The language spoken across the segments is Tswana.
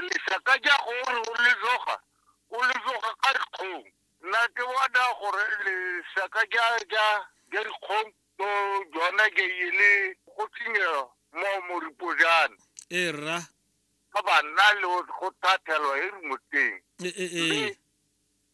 lesaka ja gore o le tloga o le tloga ka dikgong nna ke bona gore lesaka ja ja ja dikgong to jona ke e le go tsenye mo moripo jana e rra ba banna le go thathelwa e re moteng e e e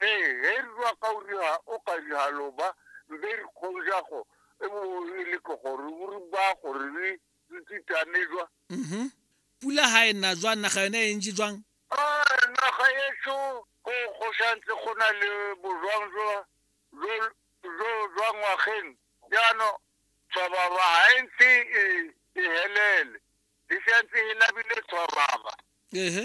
ee ge re rua ka o riha o ka riha loba mbe re kgonja go e bo e le ke gore o re ba gore re re titane jwa mhm pula ha e na jwang naga yone e ntse jwang a naga yetso go go santse go na le bojwang jwa jo jo jwa ngwageng jaano tshwababa ha e ntse e e helele e santse e labile tshwababa ehe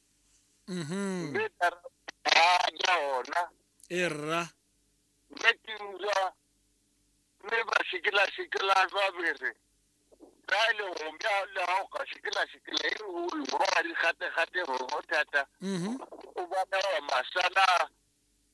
Mhm. mme ka re ba ja ona e rra mme ke utlwa mme ba sekela sekela jwa bere ka e le go ja le ga o ka sekela sekela e o le go ba di gate gate go thata Mhm. o bona wa masana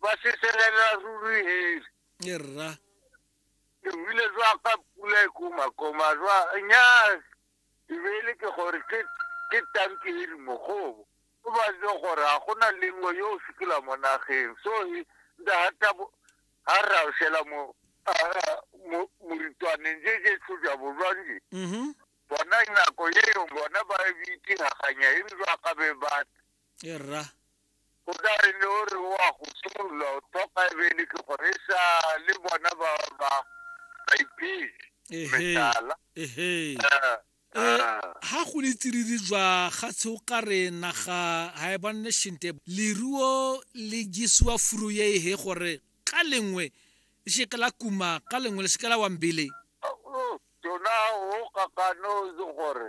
ba se selela ruri heli e rra ke buile jwa ka pula e komakoma jwa nyaa ebele ke gore ke ke tanki e di mogobo o ba je gore ga gona lengwe yo o sekela mo nageng so e- nda hata bo- ha ra o shela mo a- a- mo- moritwaneng je je tlhoja bojwanje mhm bona nako yeo bona ba e bitse gaganya e re jwa ka be ba e rra o ka re ne o re o a go simolola o tlhoka ebele ke gore e sa le bona ba ba baipele ehe metala ehe Eh, Eh, eh. ha go le tsididi jwa ga tshe o ka re naga ga e bonne shinte leruo le jesiwa furu ye ehe gore ka lengwe le seke la kuma ka lengwe le seke la wambele Oh, tona o kakano itse gore